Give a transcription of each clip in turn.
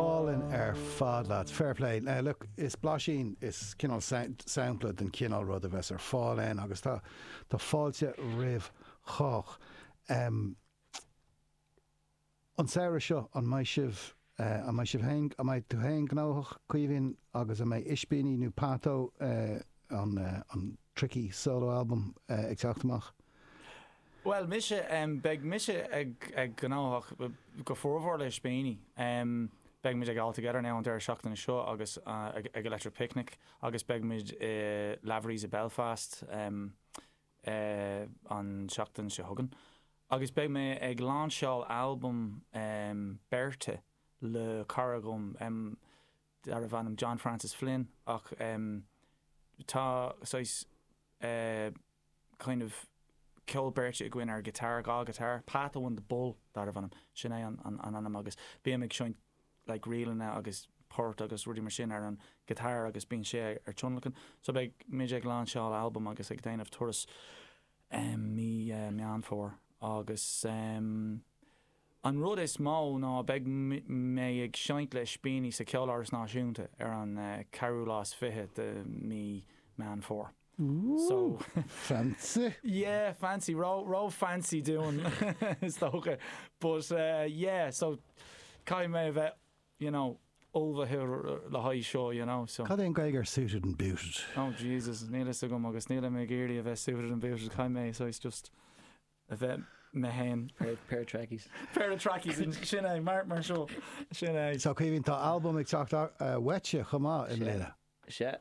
Álainn ar fad leat. Fair play. Look, is blaisín, is cineál sampla den chineál rud a bheas ar fáil ann agus tá fáilte roimh chách. An samhradh seo, an mbeidh sibh, an mbeidh sibh féin, an mbeidh tú féin gnóthach, Caoimhín, agus an mbeidh Ispíní nó Pádó, an tricky solo album, ag teacht amach? Bhuel mise, beidh mise ag gnóthach go formhór le Ispíní. Beimid ag All Together Now an deireadh seachtaine seo agus ag Electric Picnic agus beimid i Lavery's i Belfast an tseachtain seo chugainn agus beidh mé ag lainseáil albam beirte le cara agam. darbh ainm John Francis Flynn ach tá saghas kind of ceol beirte againn ar ghiotár, dhá ghiotár. Pat and the Bull darbh ainm, sin é an ainm agus bím ag seinnt like ríleanna agus poirt agus rudaí mar sin ar an ghiotár agus bíonn sé ar tionlacan. So beidh muid ag lainseáil albam agus ag déanamh turas mí Meán Fómhair agus. An rud is mó ná beidh mé ag seinnt le Ispíní sa Ceoláras Náisiúnta ar an ceathrú lá is fiche de mí Meán Fómhair. So. Fancy. Yeah, fancy, ró, ró fancy dúinn is dócha but yeah so caithfidh mé a bheith you know ullmhaithe le haghaidh seo you know so. Cad é an Gaeilge ar suited and booted? Oh Jesus, níl a fhios agam agus nílim ag iarraidh a bheith suited and booted, caithfidh mé so it's just a bheith me fhéin. Pair of trackies. Pair of trackies, sin é, mar mar seo, sin é. Seo Caoimhín, tá albam ag teacht uaitse chomh maith i mbliana. Sea,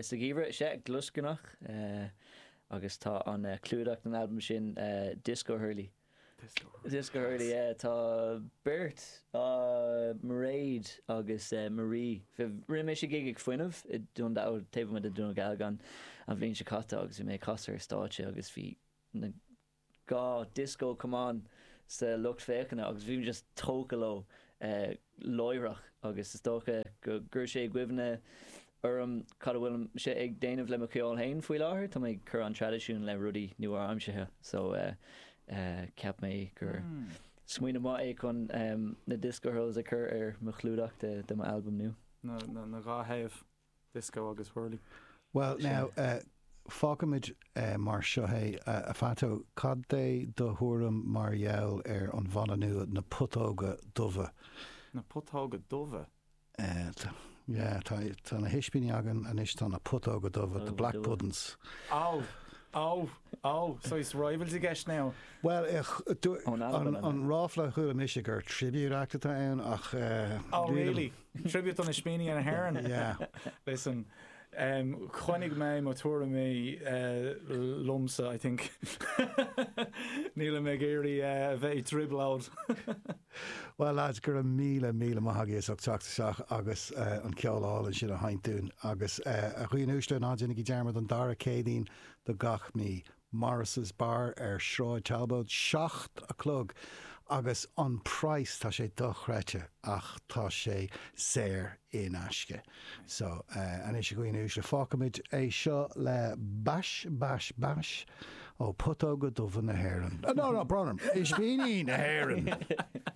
sa gheimhreadh, sea, gluaisceanach, agus tá an clúdach den albam sin Disco Hurley. Disco Hurley. Disco Hurley, yeah. Tá beirt, Mairéad agus Marie. Rinne mé sé gig ag Fuinneamh i Dún Dealgan, taobh amuigh de Dhún Dealgan an bhliain seo caite agus bhí mé ag casadh ar stáitse agus bhí na dhá disco camán sa lucht féachana agus bhí mé just tógtha leo láithreach agus is dócha go gcuir sé i gcuimhne orm cad a bhfuilimse ag déanamh le mo cheol féin faoi láthair. Tá mé ag cur an traidisiúin le rudaí nua-aimseartha so cheap mé gur smaoineamh maith é chun na disco hurls a chur ar mo chlúdach de mo albam nua. na dhá thaobh. Disco agus whirling. Bhuel, now, fágfaimid mar seo é. A Phato, cad é do thuairim mar gheall ar an bhanna nua, Na Putóga Dubha? Na Putóga Dubha? Yeah, tá na hispíní againn anois, tá na Putóga Dubha, The Black Puddin's. Oh, oh, oh, so is rivals i gceist now? Bhuel, an ráfla a chuala mise gur tribute act atá ann ach. Oh, really? Tribute d'Ispíní na hÉireann. Yeah. Listen, um, coinneoidh mé mo thuairimí uh, liomsa, I think. Níl mé ag iarraidh uh, a bheith i dtrioblóid. Well lads, go raibh míle, míle maith agaibh as ucht teacht isteach agus uh, an ceol álainn sin a sheinm dúinn agus uh, a dhaoine uaisle ná déanaigí dearmad an dara Céadaoin de gach mí. Morris's Bar ar Sráid Talbot, seacht a chlog agus an praghas, tá sé dochreidte ach tá sé saor in aisce. So, anois a dhaoine uaisle, fágfaimid é seo le bais, bais, bais ó Putóga Dubha na hÉireann. No, no, Bronner, Ispíní na hÉireann!